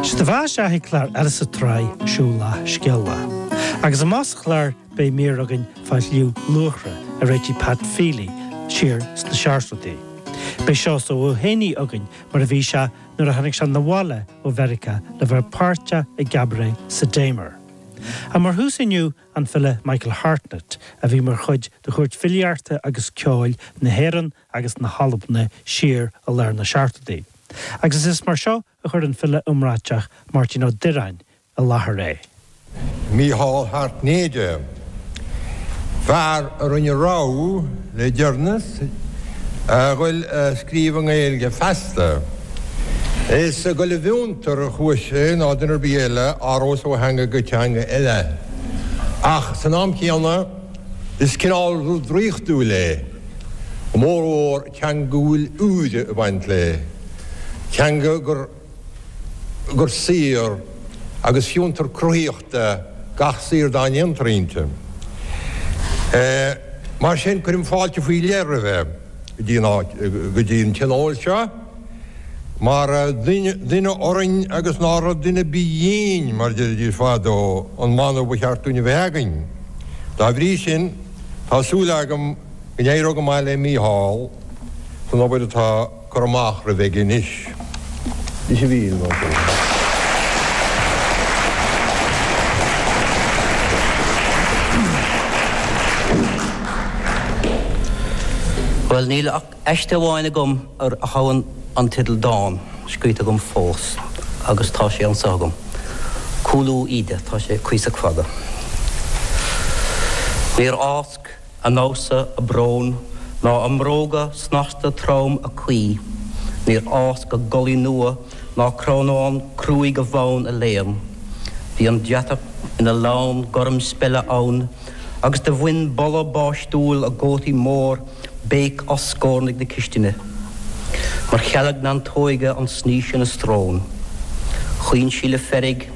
Sé do bheathasa chuig clár eile sa tsraith Siúlach Scéalach. Agus amach sa chlár beidh mír againn fá Shliabh Luachra a réitigh Pat Feeley siar sna seachtóidí. Beidh Seosamh Ó hÉanaí againn mar a bhí sé nuair a tháinig sé 'na bhaile ó Mheiriceá le bheith páirteach i gCabaret sa Damer. Ach mar thús inniu an file Michael Hartnett a bhí mar chuid de Chúirt Filíeachta agus Ceoil na hÉireann agus na hAlbna siar i lár na Seachtóidí agus is mar seo a chuir an file iomráiteach Máirtín Ó Direáin i láthair é. Mícheál hAirtnéide, fear a rinne rogha le deireanas a dhul a scríobh i nGaeilge feasta. Is ag goil i bhfiontar a chuaigh sé nó duine ar bith eile a athrós ó theanga go teanga eile. Ach san am chéanna, is cineál rud draíochtúil é. a bhfomhór teanga a bhfuil úire a bhaint léi, teanga gur gur saothar agus fiontar cruthaíochta gach saothar dá ndéantar inti. Mar sin, cuirim fáilte faoi leith roimhe go dtí an áit go dtí an tionól seo, mar duine orainn agus nárab duine ar bith dhínn, mar deiridís fadó, an mana ba cheart dúinn a bheith againn. Dá bhrí sin. Tá súil agam go n-éireoidh go maith le Mícheál san obair atá curtha amach roimhe aige anois. Bhuel, níl ach. aiste amháin agam ar a dtabharfainn an teideal 'Dán', scríte agam fós, agus tá sé anso agam, 'Cúlú Íde'. Tá sé cuíosach fada. Níor fháisc a nósa a brón, ná a mbróga snasta trom a caoi, níor fháisc a gculaith nua ná crónán cruaidh a bhfonn a léan. Bhí an deatach ina lann gorm speile ann agus do bhain boladh báistiúil a gcótaí mór. béic as scornaigh na cistine, mar chealg neantóige an snaois ina srón. Chaoin sí le feirg,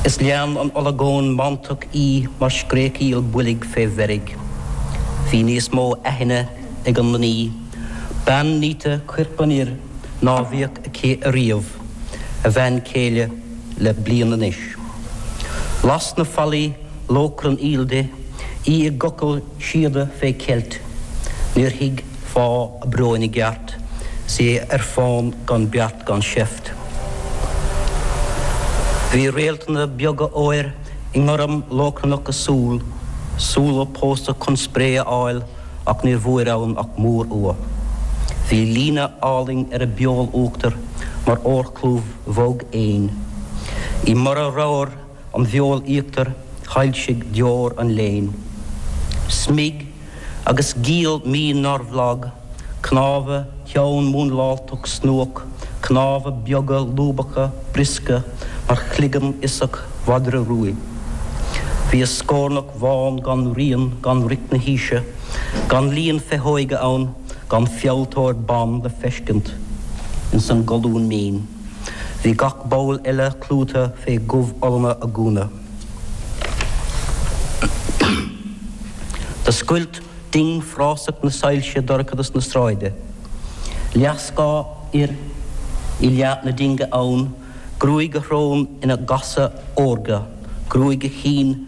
is lean an olagón mantach í mar scréachaíl bhoilg fé mheirg. Bhí níos mó aithne ag an mnaoi, bean níte cuirp an fhir, ná bhíodh aici ariamh, a bhean céile le bliain anois. Las na fallaí lóchrann aoil di, í i gcochall Síoda fé cheilt. Níor thuig fáth a bróin i gceart, 's é ar fán gan beart gan seift. Bhí réaltanna beaga óir i ngorm lóchrannach a súl, súl a pósadh chun spré a fháil ach níor bhfuair ann ach mórfhuath. Bhí líne álainn ar a beol uachtair mar órchlúmh bhog éin. I mborradh ramhar, an bheoil íochtair shoilsigh deor an léin, smig agus giall mín nárbh lag, cnámha teann múnláltach snuach, cnámha beaga lúbacha briosca mar chloigeann fhiosach mhadra ruaidh. Bhí a scornach bhán gan rian gan roic na haoise, gan líon féitheoige ann, gan fealltóir ban le feiscint ins an gcolún mín. Bhí gach ball eile clúdaithe fé dhubholann a gúna. Do scoilt ding phrásach na soilse dorchadas na sráide. Leath scáth fhir i leath na dinge ann, gruaig a shrón ina gcasadh órga, gruaig a chinn,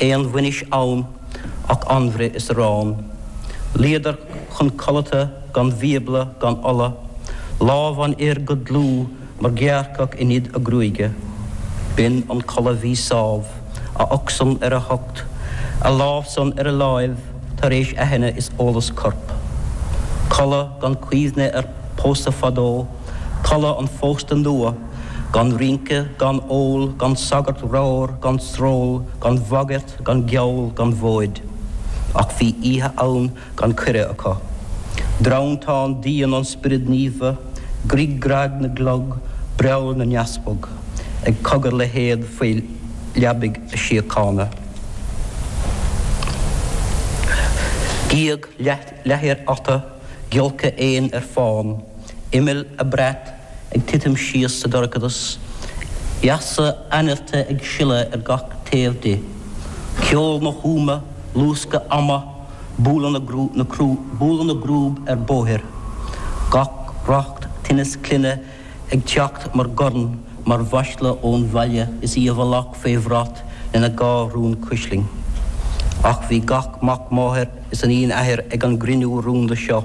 aon bhainis ann ach anbhruith is arán. Luíodar chun codlata gan bhíobla gan ola, lámh an fhir go dlúth mar ghearrcach i nead a gruaige. B'in an codladh bhí sámh, a ucht-san ar a hucht, a lámh-san ar a láimh tar éis aithne is eolas coirp. Codladh gan cuimhne ar pósadh fadó, codladh an phósta nua. Gan rince, gan ól, gan sagart ramhar, gan sról, gan bhagairt, gan geall, gan mhóid. Ach bhí aíonna gan cuireadh acu. Dream teann d'fhíon an Spioraid Naofa, grig grag na gclog, breall na n-easpag, ag cogar le héad faoi leabaidh a síochána. Gíog leathair ata, giolcadh éin ar fán, imill a brat, ag titim síos sa dorchadas, easa ainillte ag sileadh ar gach taobh di, ceol na húma, luascadh ama, bualadh na, bualadh na gcrúb ar bóithre, gach racht tinnis clainne ag teacht mar dhorn, mar mhasla ón bhaile is í i bhfolach faoi bhrat lena dhá rún cuislinn. Ach bhí gach mac máthar is iníon athar ag an gcruinniú rúnda seo.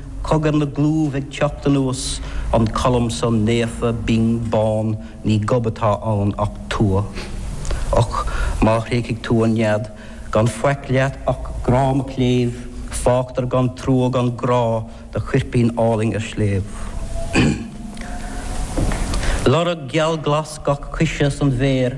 Cogar na gclúmh ag teacht anuas, an colm san naofa, binn, bán, ní gob atá ann ach tua. Och, má thréigfidh tú an nead, gan faic leat ach grá mo chléibh, fágtar gan trua gan grá do choirpín álainn ar sléibh. Lorg geal glas gach coise san bhféar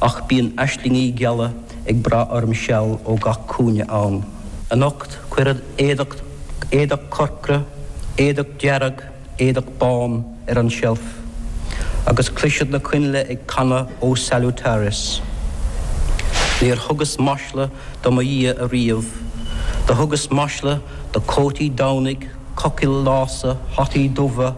Ach bíonn aislingí geala ag brath orm seal ó gach cúinne ann. Anocht cuirfead éadach, éadach corcra, éadach dearg, éadach bán ar an seilf, agus cloisfead na coinnle ag canadh O Salutaris. Níor thugas masla do mo Dhia ariamh. Do thugas masla do chótaí Domhnaigh, cochaill lása, hataí dubha,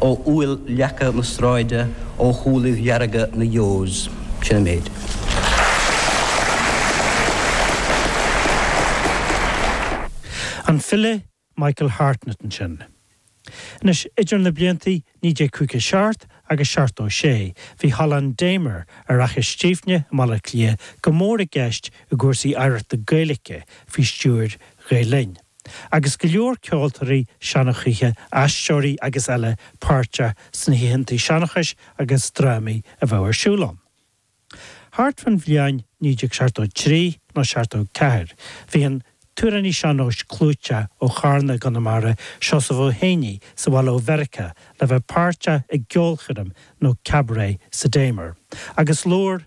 Ó fhuil leaca na sráide, ó shúilibh dearga na Yeos. Sin an méid. An file Michael Hartnett ansin. Anois, idir na blianta 1957 agus 76, bhí Halla an Damer ar Fhaiche Stiabhne i mBaile Átha Cliath go mór i gceist i gcúrsaí oidhreachta Gaeilge faoi stiúir Ghael-Linn. agus go leor ceoltóirí seanchaithe, aisteoirí agus eile páirteach sna hoícheantaí seanchais agus drámaí a bheadh ar siúl ann. Thart fán bhliain 1973 nó 74 bhí an t-amhránaí sean-nóis clúiteach ó Charna, i gConamara, Seosamh Ó hÉanaí sa bhaile ó Mheiriceá le bheith páirteach i gceolchoirm nó cabaret sa Damer agus labhair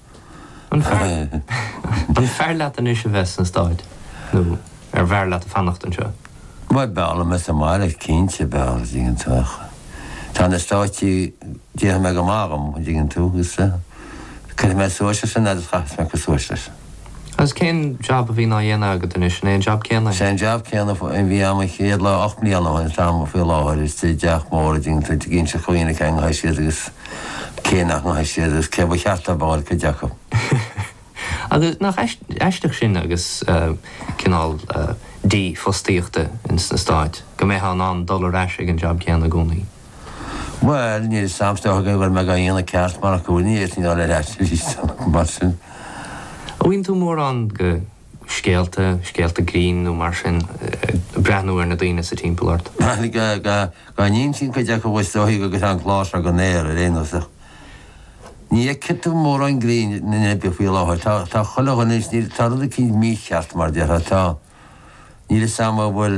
An fearr leat anois a bheith sna Stáit nó arbh fhearr leat fanacht anseo? Bhuel, b'fhearr liom bheith sa mbaile, cinnte, b'fhearr, an dtuigeann tú. Ach tá na Stáit, déarfaidh mé, go maith dhom, an dtuigeann tú, agus cuirfidh mé suas leis sin agus chaithfeas mé cur suas leis. Agus cén jab a bhíonn á dhéanamh agat anois, an é an jab céanna é? Is é an jab céanna a bhí a'm an chéad lá, ocht mbliana ó shin, atá a'm faoi láthair, istigh i dteach mór, a dtuigeann tú, ag inseacht do dhaoine cé ngabhfaidh siad agus. Cé nach ngabhfaidh siad, is cé ba cheart a bhfáil cuid acu. Agus nach aisteach sin agus cineál dífhostaíochta ins na Stáit, go mbeitheá in ann dul ar ais ag an jab céanna i gcónaí? Bhuel, níl sampla agam go bhfuil mé go aon ceart mar acmhainní, a chineál ar ais arís, mar sin. An bhfaigheann tú mórán go? scéalta, scéalta grinn nó mar sin, ag breathnú ar na daoine sa timpeall ort. Dhá n-insínn cuid acu a stoitheadh agus an clár seo den aer, ar aon nós. Ní fheicfidh tú mórán grinn i Nua-Eabhrac faoi láthair. Tá, tá chuile dhuine, tá rud eicínt mícheart, mar déarfá. Tá, níl 'fhios a'm an bhfuil.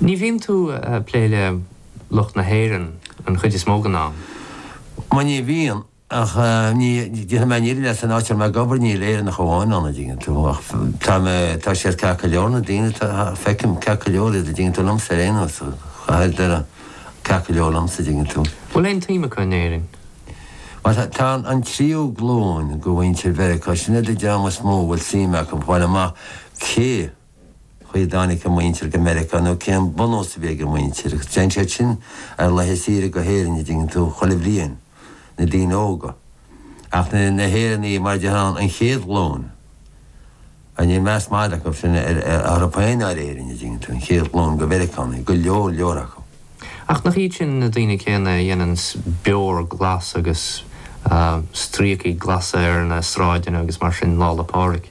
Ní bhíonn tú a' plé le lucht na hÉireann an chuid is mó den am? Bhuel ní bhíonn, ach ní, déarfaidh mé níl san áit a raibh mé ag obair níl Éireannach amháin ann a' dtuigeann tú ach tá mé, tá siad ceart go leor na daoine, tá, feicim ceart go leor iad a' dtuigeann tú, liomsa ar aon nós, chaithfeadh ar deireadh ceart go leor liomsa a dtuigeann tú. Bhfuil aon tsuim acu in Éirinn? Bhuel tá, tá an tríú glúin de mhuintir Mheiriceá, sin iad an dream is mó a bhfuil suim acu, a fháil amach cé. chaoi a dtáinig a muintir go Meiriceá nó cén bunús a bhí ag a muintir, agus téann siad sin ar laetha saoire go hÉirinn an dtuigeann tú chuile bhliain, na daoine óga. Ach na hÉireannaigh, mar a déarfá, an chéad ghlúin, níl meas mada acu sin ar a dtír féin ar Éirinn, an dtuigeann tú, an chéad ghlúin de Mheiriceánaigh, go leor leor acu. Ach nach iad sin na daoine céanna a dhéanann beoir ghlas agus stríocaí glasa ar na sráideanna agus mar sin Lá 'le Pádraig?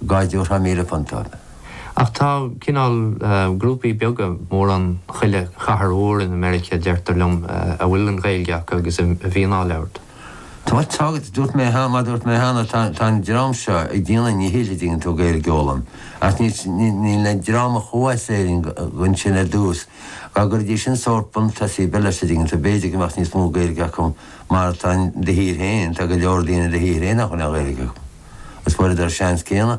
Dá dtabharfá míle punt orthu. Ach tá cineál grúpaí beaga, mórán chuile chathair mhór in America a deirtear liom, a bhfuil an Ghaeilge acu agus a bhíonn á labhairt. Tá, tá, agus mar dúirt mé cheana, tá an dream seo ag déanamh a ndíchill an dtuigeann tú Gaeilge a fhoghlaim. Ach níl níl an dream a chuaigh as Éirinn ansin ar dtús, dá gcuirfidís sin sórt buntús ar bith leis an dtuigeann tú, b'fhéidir go mbeadh níos mó Gaeilge acu. Mar atá in do thír féin, tá go leor daoine in do thír féin nach bhfuil aon Ghaeilge acu. Is fuaireadar an seans céanna.